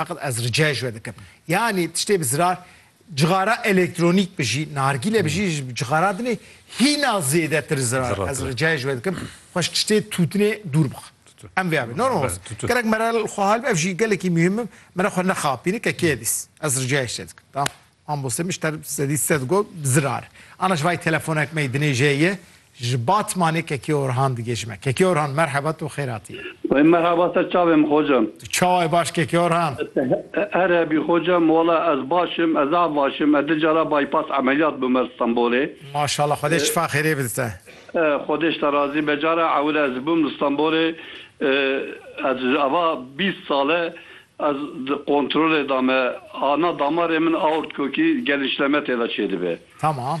Feqet ez rica ji we dikim. Yanî tiştê bi zirar cixara elektronîk bijî, nargîle bijî ji cixara din ê hîna zêdetir zirar. Ez rica ji we dikim xwe ji tiştê tûtinê dûr bixe. Em vêya bê. Gerek mere li xwe hal be ev jî gelekî muhîm im. Mere xwe nexapîne ke kê dîs. Ez rica ji te dikim. Ambose min ji te sedî sed got bi zirar. Ana ji vayî telefonek me yê dinêje ye ji Batmanê Kekê Orhan digê ji me. Kekê Orhan merheba tu xêratî yî. Wey merhaba ser çavê min xoca. Tu çawa yî baş Kekê Orhan? Her hebî xoca min wala ez baş im ez av baş im ez di cara bypass emeliyat bûm er Stenbolê. Maşallah xwedê şifa xêrê bide te. Xwedê ji te razî be cara ewil ez bûm li Stenbolê ez ji ava bîst sal e Ez di kontrolê de me. Ana damarê min aort kokî gelî şleme tê de çêdibe. Tamam.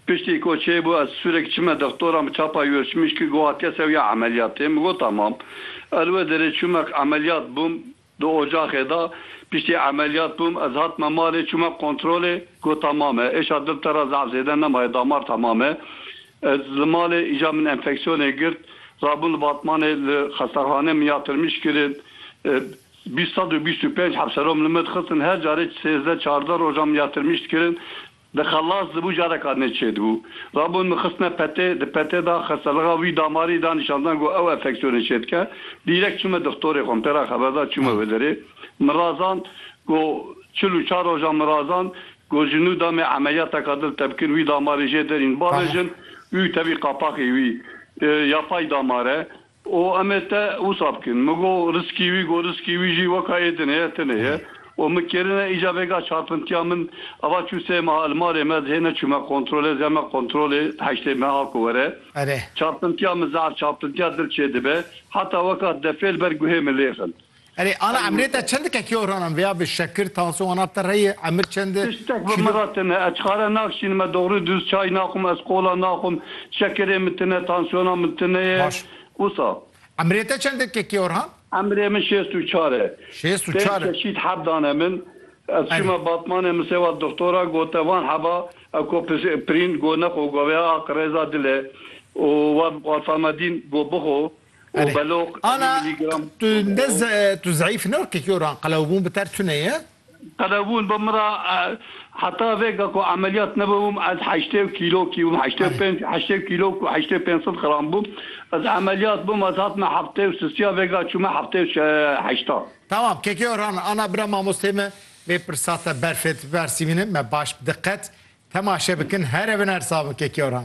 Piştî ku çêbû ez sûrek çime dextoran bi çapa Yurçmişkî got ke sewiya emeliyatê. Min got tamam. Ez wê derê çûme emeliyat bûm di ocaxê de. Piştî emeliyat bûm ez hatime malê çûme kontrolê got tamam e. Êşa dil te re zaf zêde nemaye damar tamam e. Ez li malê îja min enfeksiyonê girt, rabûn li Batmanê li xestexaneya min ya Tirmîş kirin. Bîst sed û bîst û pênc hevserom li min dixistin, her carê sêzdeh çardeh rojan min ya Tirmîş dikirin. Dixelas dibû careka nê çêdibû. Rabûn min xistine petê, di petê de xestelixa wî damarî da nîşan dan ku ew enfeksiyonê çêdike. Dîrek çûme dixtorê xwe, min pê re xeber da çûme wê derê. Min razand ku çil û çar rojan min razand Ku ji nû damê emeliyateka dil tevkir wî damarê jê derîn bavêjin û tevî qapaxê wî ya pay damar e û em ê te wisa bikin. Min got riskî wî got riskî wî jî weka yê din heye tune ye û min kêrine îca vêga çarpintiya min ava çû sê meha li malê me dihê neçûme kontrolê zeh me kontrolê heştê meha ku were çarpintiya min zehf çarpintiya dil çêdibe heta weka defê li ber guhê min lêxin. Erê ana emrê te çend dike kê oranan vêya bi şekir tansiyon ana te reyê emir çend e? Tiştek bi min kîlo? re tine ez çare nakşînim me dogri duz çay naxwim ez kola naxwim şekirê min tine tansiyona min tine ye Baş. wisa. Emrê te çend dike kê orhan? Emrê min şêst û çar e. Şêst û Pênc çar e. çeşît heb dane min. Ez Erê. çûme batmanê min sêwa dixtora gote van heba ew ko pis pirîn go nexwe go vêya aq rêza dile û wan Alfamedîn go bixwe. Erê. Ana tu ne tu zeîf ne wekî kî ran qelewbûn bi ter tune ye. Qelewbûn bi min ra heta vêga ku emeliyat nebûm ez heştê û kîlo kî bûm heştê û pênc heştê kîlo ku heştê û pênc sed qram bûm ez emeliyat bûm ez hatime heftê û sisî ya vêga çûme heftê û heşta. Tamam kê kê ran ana bira mamosteyê me vê pirsa te berfê ti versîvînin me baş bi diqet temaşe bikin here binersa min kê kê ran.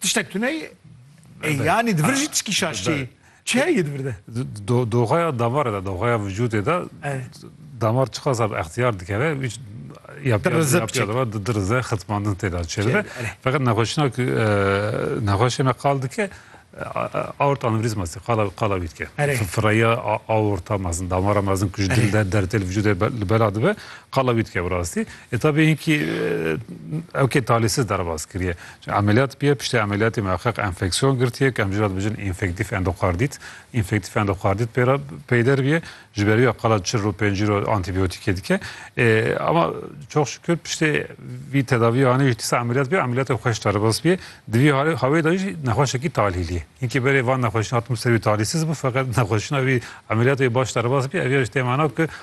Tiştek tuneyê ê yanî di vir jî tişkî şaştê yê. Çi heye di vir de? Doxaya damarê de, doxaya vücudê de damar çiqasa bi extiyar dikeve wî dirize xitmandin têda çêdibe. Feqet nexweşina ku nexweşê me qal dike aorta anevrizma sê qala qala wî dike. Fireya aorta mezin damara mezin ku ji dil de dertê li vücudê li bela dibe qala wî dike bi rastî. E tabî hinkî ew kê talîsiz derbas kiriye. Emeliyat bûye, piştî emeliyatê miheqeq enfeksiyon girtiye ku em jî re dibêjin înfektîf endokardît. Înfektîf endokardît pê re peyder bûye. Ji ber wî qala çil rû pêncî rû antîbiyotîkê dike. Ama çok şükür piştî vî tedaviyê anî jî dîsa emeliyat bûye. Emeliyatê xweş derbas bûye. Di vî hawê de jî nexweşekî talîlî ye. Hinkî berê van nexweşîna hatibûn ser wî talîsiz bû feqet nexweşîna wî emeliyatê wî baş derbas bûye. Ev ya jî tê mana ku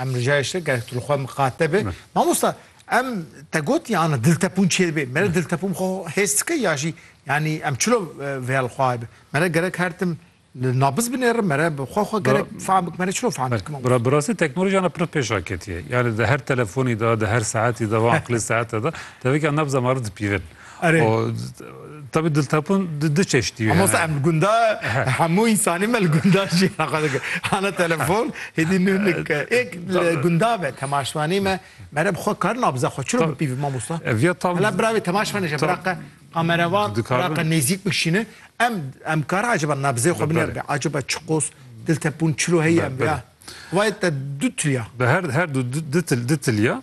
Em rica ji te gelek tu li xwe miqate be. Mamosta em te gotiye ana diltepûn çêr bê. Mere diltepûn xwe hêz dike ya jî yanî em çilo vêya li xwe aye be. Mere gerek her tim li nabiz binêrim mere bi xwe xwe gerek fehm bikim mere çilo fehm bikim. Bira bi rastî teknolojiyana pir pêşa ketiye. Yani di her telefonî de, di her saetî de, va aqilê saete de tevekî nabza ma re dipîvin. Erê. O tabi diltapun di du çeştî ye. Mamosta em gunda hemû însanî me li gunda jiyana xwe dike. Hana telefon hêdî nû nik êk li gunda be temaşvanî me mere bi xwe kar nabze xwe çiro bipîvî mamosta. Viya tam Hela biravê temaşvanê je biraqe kamerevan biraqe nêzîk bikişîne em em kar acaba nabzê xwe biner be acaba çiqos diltepûn çiro heye em bira. Xwayê te du tiliya. Bi her her du du til du tiliya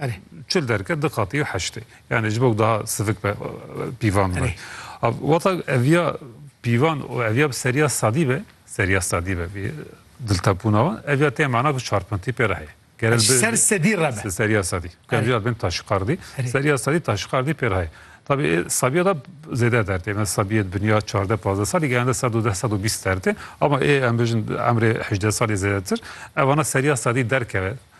Erê. Çil derket di qatî û heştê. Yanî ji bo ku daha sivik be pîvan be. Wata eviya pîvan û eviya bi seriya sadî be, seriya sadî be vî diltepûna wan, eviya tê mana ku çarpintî pê re heye. Gerek bi ser sedî re be. Seriya sadî. Gerek bin taşqardî, seriya sadî taşqardî pê re heye. Tabî ê sabiya da zêde der tê. Mesela sabiyê di binîya çardeh pazdeh salî geyande sed û deh sed û bîst der tê. Ama ê em bijin emrê hejdeh salî zêdetir. Evana seriya sadî derkeve.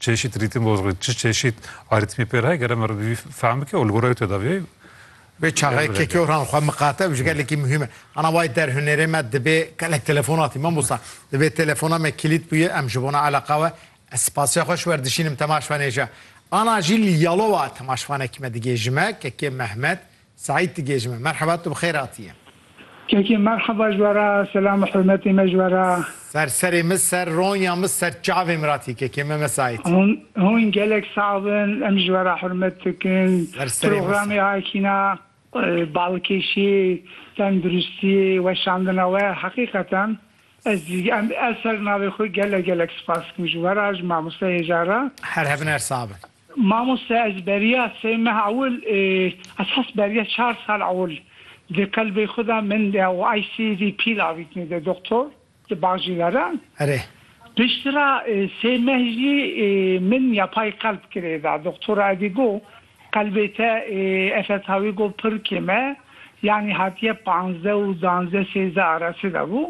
Çeşît rîtim boz re çi çeşît arîtmî pêr heye gere me re bî fehm bike û li goreyê tedaviyê Vê çaxê kekyoran xwe miqate ew ji gelekî muhîm e. Ana wayî der hunerê me dibê gelek telefonatî mamosta. Dibê telefona me kilît bûye em ji bona eleqa we ez spasiya xwe ji wer dişînim temaşvanê ji ana jî li Yalova temaşvanekî me digê ji me kekê Mehmet Seîd tu gê ji me. Merheba tu bi xêr atiye. Kekê merheba ji we re selam û hurmetê me ji we re. Ser serê min ser ronya min ser çavê min ratî kekê me me Seîd. Hûn gelek sax bin em ji we re hurmet dikin. Ser serê min ser. Programê Akîna balkêşî, tenduristî, weşandina we heqîqeten ez em ez ser navê xwe gelek gelek spas dikim ji we re ji mamoste hêja re. Her hebin her sax bin. Mamoste ez beriya sê meh ewil ê ez hest beriya çar sal ewil di qelbê xwe de min de û ICD pîl avîtine de doktor di bacîle de. Erê. Pişt ra sê meh jî min yapay qelb kirê da. Doktora edî go qelbê te FSH wî go pir kêm e yanî hatiye panzde û danzde sêzde arase de bû.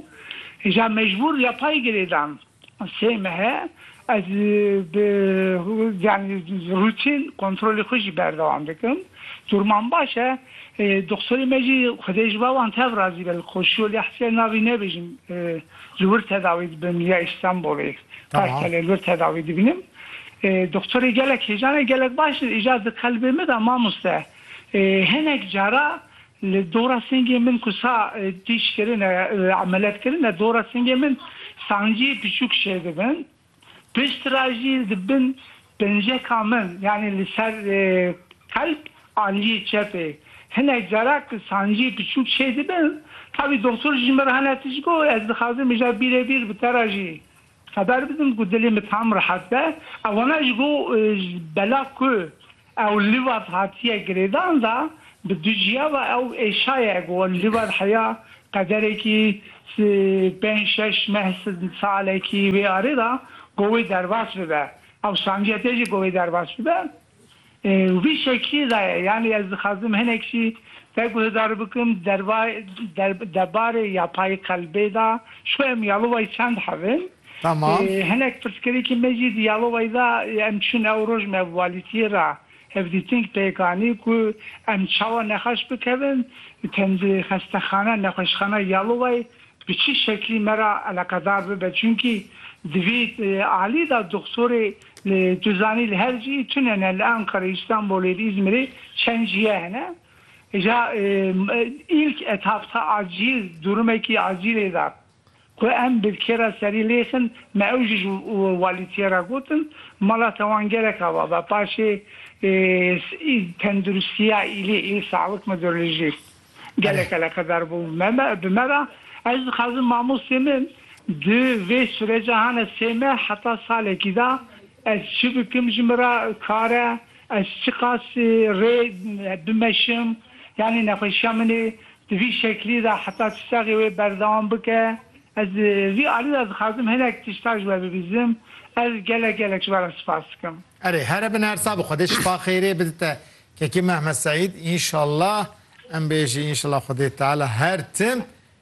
Îja mecbûr yapay girê dan. Sê mehe ez bi yanî rûtîn kontrolê xwe jî berdewam dikim. Durman baş e. Doxtorê me jî xwedê ji ber wan tev razî be li koşiyo lê hesiyê navê nebêjim li wir tedawî dibim ya Îstanbulê Kartalê li wir tedawî dibinim. Doxtorê gelek hêjan e gelek baş îcar di qelbê me de mamoste. Hinek cara Li dora singê min ku sa tîj kirine, emeliyat kirine, dora singê min sanciyê piçûk şêr dibin. Pişt re jî di bin penceka min yanî li ser qelb aliyê çepê hinek cara ku sanciyê piçûk şêr dibin. Tavî doxtor ji min re hene tişt got, ez dixwazim mija bîrê bîr bi te re jî xeber bidim ku dilê min tam rehet be. Ew hene ji bo bela ku Ew li vat hatiye girêdan da bi du ciya ve ew êşaye ku li vat heya qederekî pênc şeş neh salekî wê arê da ku wê derbas bibe ew sancîya tê jî ku wê derbas bibe û vî şekî da ye yanî ez dixwazim hinek jî te guhidar bikim derba debarê yapayî qelbê da ji xwe em ya li way çend hev in. Tamam. Hinek pirsgirêkê me jî di yalowayî de yê em çin ew roj me valîtiyê re hevdîtîng pêk anî ku em çawa nexweş bikevin tend xestexane nexweşxana yalowayî bi çi şeklî me re eleqedar bibe çunkî di vî alî de doxtorê li tu zanî li her cî tune ne li Enqerê Îstanbulê li Îzmirê çend jiye hene ja ilk etapta acîl durumekî acîlê de. Ku em bi kê re serî lêxin, me ew jî ji walîtiyê re gotin, mala te wan gerek ava be. Paşê tendirustiya îlî, îl sağlık müdürlî jî gelek eleqedar bû bi me re. Ez dixwazim mamostê min di vê sureca hane sê meh heta salekî de Ez çi bikim ji min re kar e, ez çiqas rê bimeşim, yanî nexweşiya min ê di vî şeklî de heta tu sexê wê berdewam bike. Ez li vî alî de dixwazim hinek tişta ji we bibîzim. Ez gelek gelek ji we re sipas dikim. Erê here bin her sa bi xwedê şifa xeyrê bidite kekê Mehmet Seîd inşallah em bêjî inşallah xwedê teala her tim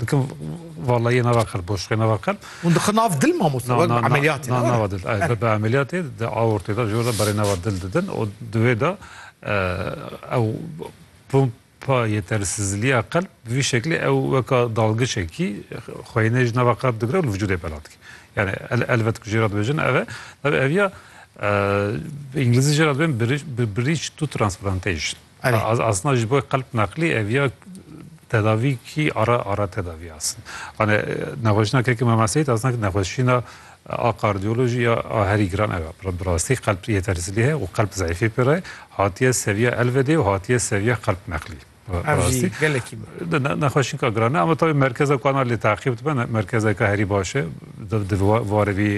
Dikin vallahiye nava qelb boşluqê nava qelb. Hûn dixin nav dil mamosta wek ameliyatê. Na nava dil. Ev bi ameliyatê di aortê de jor berê nava dil didin û divê de ew pompa yetersizliya qelb bi vî şeklê ew weka dalgişekî xweyînê ji nava qelb digire û li vücudê bela dike. Yani elbet ku jê re dibêjin ev e. Ev ev ya îngilîzî jê re dibên bridge to transplantation. Erê. Asna ji bo qelp neqlî ev ya tedavî kî ara ara tedavî asin. Anê nexweşina kekê me meseyît asna ki nexweşîna a kardiyolojî ya a herî giran ev e. Bi rastî qelp yetersizlî heye û qelp zeyfî pê re hatiye seviya elvedê û hatiye seviya qelp neqlî. Ev jî gelekî nexweşînka giran e ama tavî merkeza ku ana lê teqîb dibe merkezeke herî baş e di warê vî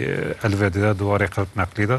elvedê de di warê qelp neqlî de.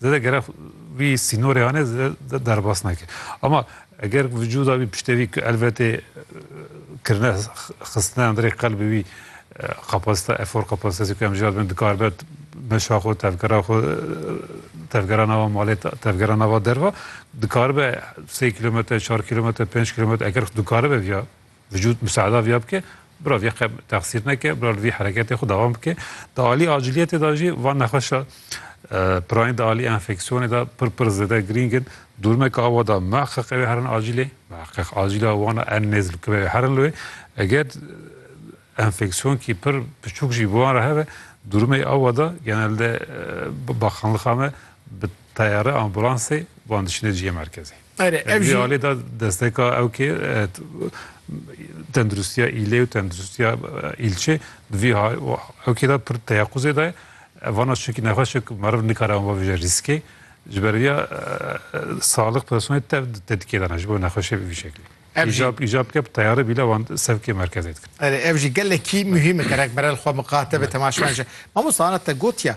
Zede gerek wî sînorê anê zede derbas neke. Ama eger vücuda wî piştê wî elbetê kirine xistine endirê qelbê wî kapasite efor kapasitesi ku em jî dibin dikar be meşa xwe tevgera xwe tevgera nava malê tevgera nava derva dikar be sê kilometre çar kilometre pênc kilometre eger dikar be viya Vücut musada viya bike, bira vê qe texsîr neke, bira li vê hereketê xwe dewam bike. Di alî aciliyetê de jî van nexweşa pirayîn di alî enfeksiyonê de pir pir zêde girîng in. Dûrmeke awa de mehqeq ew ê herin acîlê, mehqeq acîla wan a en nêz li ku ew ê herin li wê. Eger enfeksiyonkî pir piçûk jî bi wan re hebe, dûrmeyê awa de genelde bi bakanlixa me bi teyare ambulansê wan diçine cihê merkezê. Ere, ev jî alê da desteka ew kê tenduristiya îlê û tenduristiya îlçê di vî ew kê da pir teyaquzê de vana şikî nexweşik meriv nikare wan bije rîskê ji ber vîya saliq personê tev tetkê dana ji bo nexweşê bi vî şeklî. Îjab îjab ke bi teyare bîle wan sevkê merkezê dikin. Ere, ev jî gelekî muhîm e gerek berel xwe miqate be temaşeyan ji. Mamosta ana te gotiya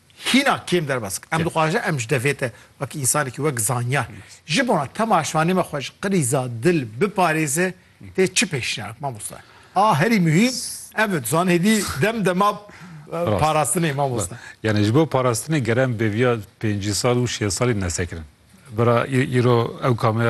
Hîna kêm derbas dike. Em dixwajin em ji devê te wek însanekî, wek zanyar ji bona tema şivanê me xwe ji qirîza dil biparêze tê çi pêşniyar bike mamoste? A herî muhîm ev e dizan hêdî dem dema parastinê mamoste. Yanî ji bo parastinê gerem bêviya pêncî sal û şêst salî nesekirin. Bira îro ew kameya